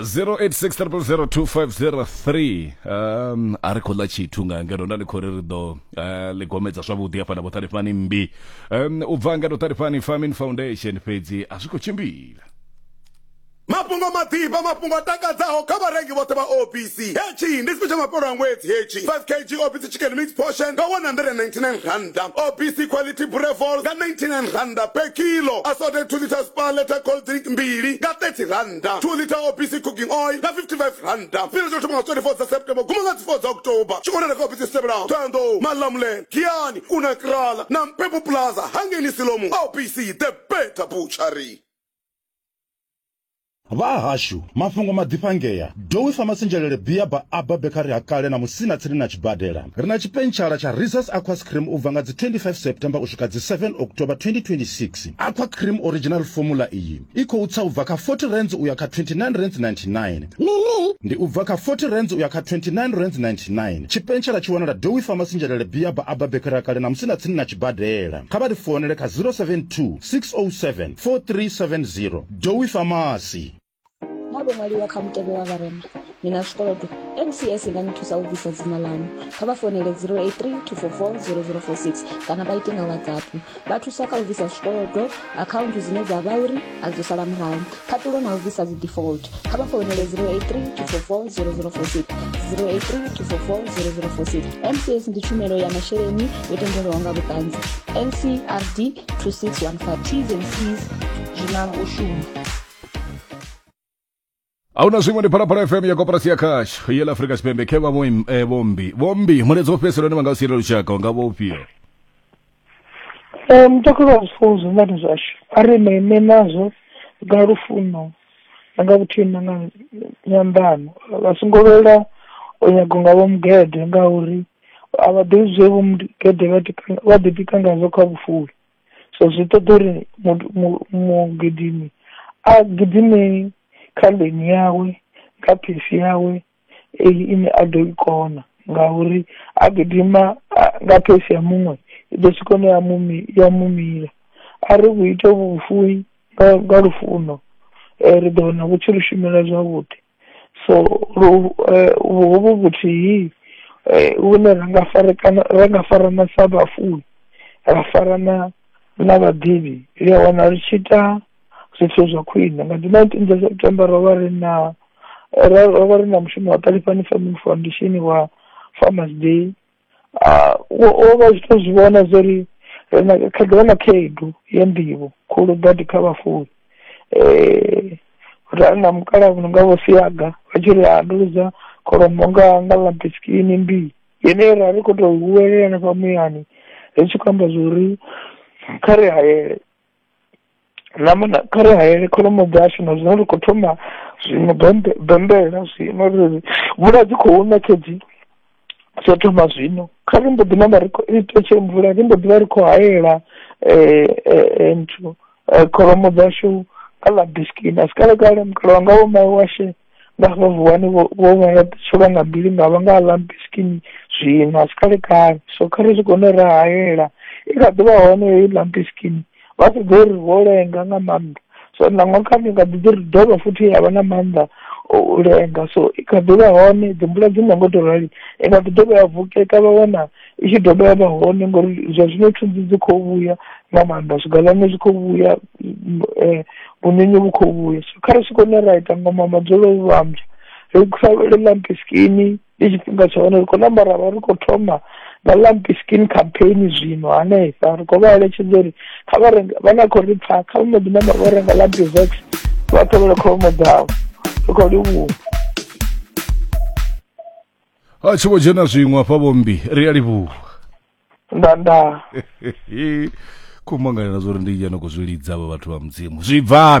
zero eight six triple zero two five zero three um a ri khou ḽa tshithu nga ngeno nda ndi khou ri ri ḓo eh, ḽi gomedza zwavhuḓi hafha na vhoṱalifhani mmbi um u bva nga vhoṱalifhani farming foundation fhedzi a zwi khou tshimbila Mafhungo maḓifha, mafhungo a takadzaho kha vharengi vhoṱhe vha OPC. Hetshi ndi tshipi tsha mafhelo a ṅwedzi hetshi, 5 kg OPC Chicken Mix Portion nga R199, OPC Quality Brevol nga R99 per kilo, Assorted 2 litres Spar Letter Cold Drink mbili nga R30, 2 litre OPC Cooking Oil nga R55. Tshifhinga tsho thoma nga 24 dza September guma nga dzi 4 dza October. Tshi wanala kha ofisi dzi tevhelaho, Thohoyandou, Malamulele, Giyani, Kunakral na Mpepu Plaza, Hangeni Siloam, OPC The Better Butchery. vha hashu mafhungo maḓifhangea dowi famasinzhelele bia ba aba bekari ha kale na musina tsini na tshibadela ri na tshipentshara tsha risas aqua scream u bva nga dzi 25 september u swika dzi 7 october 2026 aqua cream original formula iyi i khou tsa u bva kha 40 rands u ya kha 29 rands 99 ndi u bva kha 40 rands u ya kha 29 rands 99 tshipentshara tshi wanala dowi famasinzhelele bia ba aba bekari ha kale na musina tsini na tshibadela kha vha ri founele kha 072 607-4370 Dowie Pharmacy. Naa vho ṅwaliwa kha mutevhe wa vharema? Ni na zwikolodo? NCS i nga ni thusa u bvisa dzina ḽaṋu. Kha vha founele 083 244 0046 kana vha ite nga WhatsApp. Vha thusa kha u bvisa zwikolodo, akhaunthu dzine dza vha uri a dzo sala murahu, Phaṱulo na u bvisa dzi default. Kha vha founele 083 244 0046 083 244 0046. MCS ndi tshumelo ya masheleni yo tendelwaho nga vhuṱanzi. NCRD 2615 T's and C's zwi na u shuma. ahuna zwiṅwe ndi phalaphala fm ya koporasi ya cash ye la afrika tshipembe khe vha vho im- eh, vhombi vhombi mulaedza wo fhedzisela une vha nga u siela lushaka u nga vha ufhio Ee, mutakalo wa zwifuwo zwihulwane zwashu, a ri ṋee ṋee nazwo, nga lufuno, na nga vhuthihi na nga nd- nyambano, vha songo lwela, u nyaga unga Vho Mugede- ngauri, a vha ḓivhi zwe Vho Mugede- vha ḓi kanga- vha ḓi tika ngazwo kha vhufuwi, so zwi ṱoḓa uri mut- mu- mugidimi, a gidime, kha ḽivi yawe, kha phisi yawe. eyi ine a ḓo i kona, ngauri a gidima a nga pheshe ya muṅwe, i ḓo swika hune ya mu mi-, ya mu mila , ari vhu ite vhufuwi, nga nga lufuno, ri ḓo wana vhu tshi ri shumela zwavhuḓi, so lu hovhu vhuthihi, hune ra nga farekana, ra nga farana sa vhafuwi, ra farana na vhaḓivhi, ri a wana ri tshi ita, zwithu zwa khwiṋe, nga ḓuvha ḽa September ro vha ri na. ro ro vha ri na mushumo wa Ṱalifhani Farming Foundation wa Farmers Day ah, wo wo vha zwi to zwi vhona zwo ri ri na kha ḓivha na khaedu ya nḓivho khulu badi kha vhafuwi eh ra ri na mukalaha muno nga vho siaga vha tshi ri ha ndo luzwa kholomo nga nga ḽa bisikini mbii yeneyo ra ri khou tou huwelela na fha muyani ri tshi khou amba zwo ri kha ri hayele ḽa muna kha ri hayele kholomo dzashu na zwino ri khou thoma zwiṅwe bammbela bammbela zwino ri ri mvula dzi khou na khedzi tsho thoma zwino kha ri mbo ḓi namba ri khou ri thetshele mvula ri mbo ḓi vha ri khou hayela nthu kholomo dzashu kha ḽa biskini asi kale kale mukalaha wanga vho mawe washu. vha vha vuwani vho vho vha ya tsholwa nga bili nga vha nga ḽa mbiskini zwino a si kale kale so kha ri zwi kone ra hayela i kha ḓi vha hone heyi ḽa mbiskini vha si ḓo ri vho lenga nga maanḓa so nangwa kha ni nga ḓi ḓi ri dovha futhi ya vha na maanḓa o u lenga so i kha ḓi vha hone dzi mvula dzi no ngo to rali i kha ḓi dovha ya vukeka vha wana i tshi dovha ya vha hone ngori zwa zwino thunzi dzi khou vhuya nga maanḓa zwigalane zwi khou vhuya um vhunyunyu vhu khou vhuya so kha ri swike hune ra ita ngoma madzolo u vhambya ri sa vhele lampi skini ndi tshifhinga tsha hone ri khou namba ra vha ri khou thoma na lampi skin campaign zwino hanefha ri khou vha eletshedza uri kha vha renga vha na khou ri pfa kha vha mbo ḓi namba vho renga lampi vex vha ṱhavhele kholomo dzavho ri khou livhuwa a tshi vho dzhena zwiṅwe afha vhombi ri a livhuwa nda nda kumangalela zwo ri ndi yena khou zwi lidza vha vhathu vha mudzimu zwi bvafhi